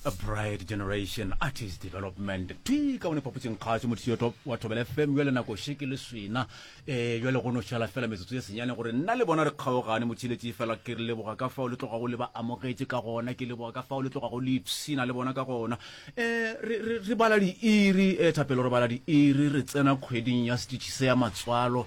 a bright generation artist development thwi ka one phapotseng kgaso motiyoto wa thobele fm jale nako sheke le swena um eh, jale go no šala fela metsotso e senyane gore nna le bona re kgaogane motheletši fela ke re leboga ka fao le tlogago le ba amogetše ka gona ke leboga ka fao le tlogago le ipshina le bona ka gona um re bala diiri um thapelo re bala diiri re tsena kgweding ya setšhi se ya matswalo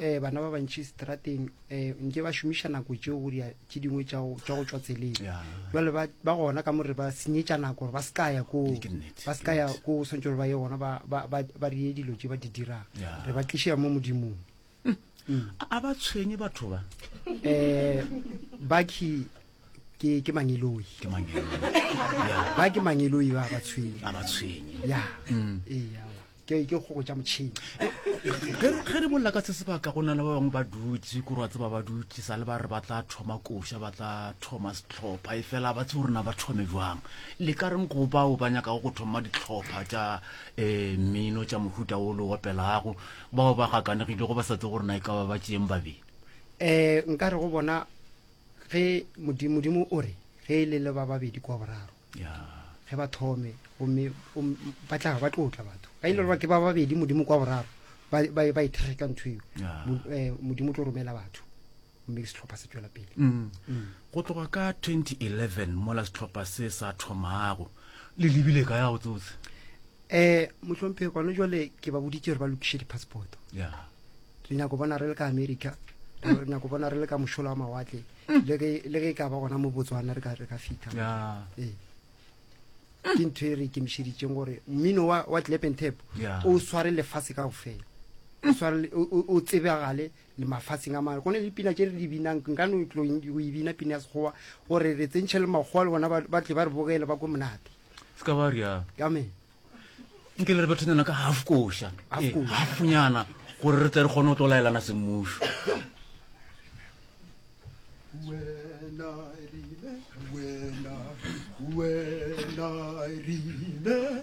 eh, bana ba bantši strateng eh, nke ba šomiša nako tšeo go dia tše dingwe tša go tša go tšwa tseleng Yeah. jale ba ba gona ka more ba senyetša nako gore ba se ka ya ko Ke nnete, ba se ka ya ko o swantse gore ba ye gona ba- ba ba- ba reye dilo tše ba di dirang Yeah. re ba tlišea mo modimong A- a ba tshwenye batho ba eh baki ke ke mangeloi ke mang eo? Yeah, ba ke mangeloi ba ba tshwenye a ba tshwenye ya Mm. ee awa. ke ke go tša motšhini ge re bolela ka se sebaka go na le ba bangwe ba dutse kore wa tseba ba dutse sa le ba re ba tla thoma koša ba tla thoma setlhopha e fela ba tseo rena ba thome jwang le ka reng go bao ba nyakago go thoma ditlhopha tša um mmino tša mohuta o le opelago bao ba gakanegile go ba sa tse go rena e ka ba ba tšeeng babedi um nka re go bona ge modimo o re ge e le le ba babedi kwa boraro ge ba thome gomme ba tla ba tlo tla batho ba ile gore ke ba babedi modimo kwa boraro ba e thegeka ntho eo eh, modimo o tlo romela batho mme ke setlhopha se tswela pele mm. Mm. go tloga ka 2011 mola setlhopha se sa thomago le lebile ka ya go tsotse um eh, motlhomphe gone jale ke ba boditse gore ba lokiše di-passporto re nyako bona re le ka america re nyako bona re le ka mošola wa mawatle mm. le ge le ge ka ba gona mo Botswana re ka re ka fitha yeah. eh ke ntho e re ikemišeditseng gore mmino wa wa clap and tap o sware lefatshe ka go fela o sware o tsebagale le mafatsheng a mangwe gone le pina tse re di binang nka no tlo go e bina pina ya sekgowa gore re tsentšhe le makgowa le bona ba tle ba re bogele ba ko monate se ka ba rialo amen nke le re bethonyana ka half koša halfnyana eh, gore re tle re kgone go tlo laelana semmušo When I, when I remember